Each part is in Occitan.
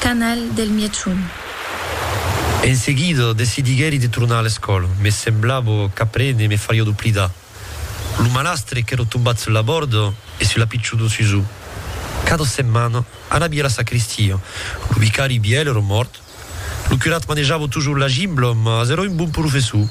canal del Mièchon. En seguida, decidiguèri de tornar a l'escòla. Me semblava qu'aprene me fariá doblidar lo malastre qu'èra tombat sus la bòrda e sus la pichona Susù. Cada setmana, anavi a la sacristia. Lo vicari vièlh èra mòrt. Lo curat manejava totjorn la gimbla, mas èra un bon professor.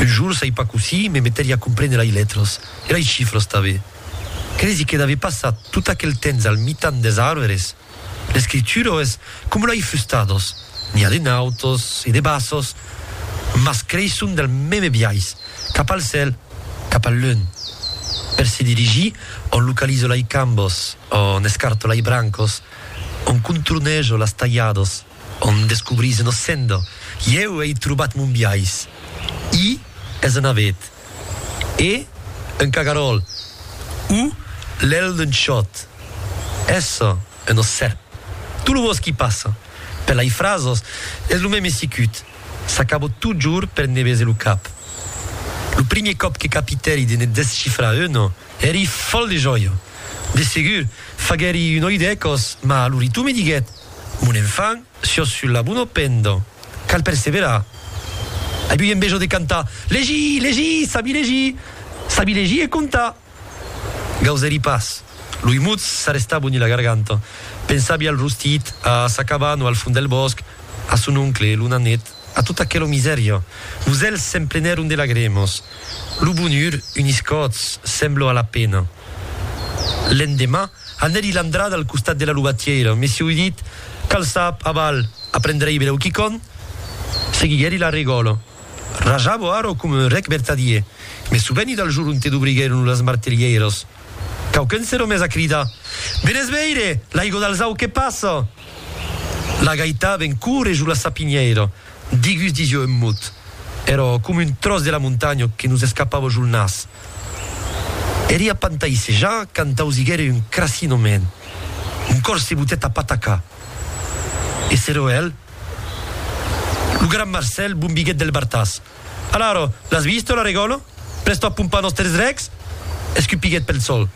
Un jorn, sai pas cossí, me metèri a comprene lai letras e lai chifras tanben. Cresi que n'avè passat tot aquel temps al mitan des arvres. L'escritura es coma lei fustados, n'i a de nautos e de bassos, mas creisson del meme biais, cap al cèl, cap al lun. Per se dirigir, on localizo lei cambos, on escarto lei brancos, on contornejo las talhados. Òm descobrís ena senda. Ieu ei trobat mon biais. I es un avet. E un cagaròl. U lèl d'un chòt. Essa un ossèp. Tot lo bòsqui passa. Per lai frasos es lo mème sicut. S'acabo totjorn per ne bese lo cap. Lo primier còp que capitèri de ne descifrar una. Èri fòl de jòia. De segur, faguèri un oi de còs, mas lo ritu me diguèt, Mon enfant, siòs sul la bona penda. Cal perseverar. Ai ui enveja de cantar, Legir! Legir! Sabi legir! Sabi legir e contar! Gausèri pas. Loi mutz s'arrestava uni la garganta. Pensavi al rostit, a sa cabana al fond del bòsc, a son oncle, lo nanet. A tot aquelo misèria, los èlhs se'n plenèron de lagrèmas. Lo bonhur unís còths, semblo a la pena. L'endemà, anèri l'andrada al costat de la lobatièira, mesieu dit, cal sap, aval, aprendrèi berèu quicòm? Seguiguèri la regòla. Rajavo ara coma un rèc vertadier, me soveni del jor onte dobriguèron las martelhèiras. Quauqu'un s'era mes a cridar, Venètz veire, l'aigo d'Alzau que passa! La gaita ven cur e jo la sapinhèira, digus disiò un mot, èrò com un tròç de la montanha que nos escapava jo el nas. Eria pantaissejar quand ausiguère un crassinament, mon còr se botèt a patacar. E s'erò el, lo gran Marcèl bombiguèt del bartàs. Alaro, l'as visto, la Regòlo? Prèsto a pompar nòsters drechs? escupiguèt pel sol.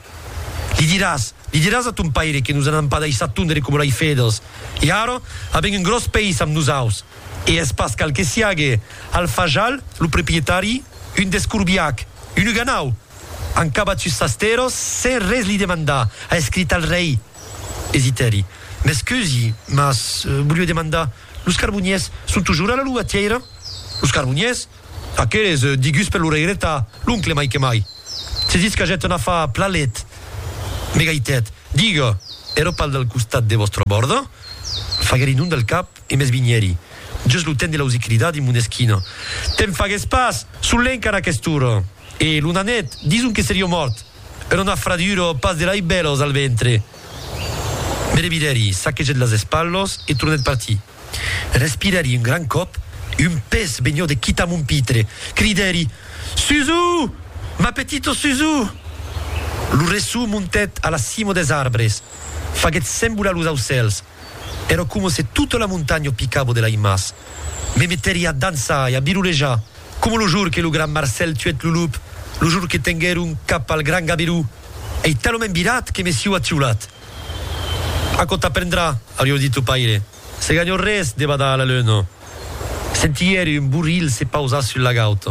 Li diràs, li diràs a ton paire que nos anam pas daissar tondre coma lai fedels. E ara, avèm un gròs país amb nosaus. E es pas cal que siague Al Fajal, lo proprietari, un descorbiac, un uganau! An cabat sus sas terras sens res li demandar, a escrit al rei. Esitèri. M'excusi, mas volió demandar. Los carboniers son tujor a la lugatièira? Los carboniers? Aqueles, diguts per l'oreireta, l'oncle mai que mai. Se ditz qu'agèt un afar plalet. Me gaitèt, Diga, ero pas del costat de vòstra bòrda? Faguèri non del cap e m'esvinhèri, just lo temps de l'ausir cridar dins mon esquina, Te'n fagues pas! Son lenc ara aquest'ora! E lo nanet, dison que serió mòrt. Era una fradura, pas de lei bèlos, al ventre. Me revidèri, saquegèt las espalhos e tornèt partir. Respirèri un gran còp, un pes vegnou de quitar mon pitre. Cridèri, Suzu! Ma petito Suzu! Lo resson montèt a la cimo des arbres, faguèt sembolar los aucèls. Èra coma se tota la montanha picava de laimas. Me meteria a dançar e a birulejar, coma lo jour que lo gran Marcèl tuèt lo lup, lo jour que tenguèron cap al gran Gaberú. Ei talament virat que me siu atiolat. Aquò t'aprendrà, aurió dit lo paire, se ganhò res de badar a la luna. Sentièri un borrilh se pausar sul lagaut.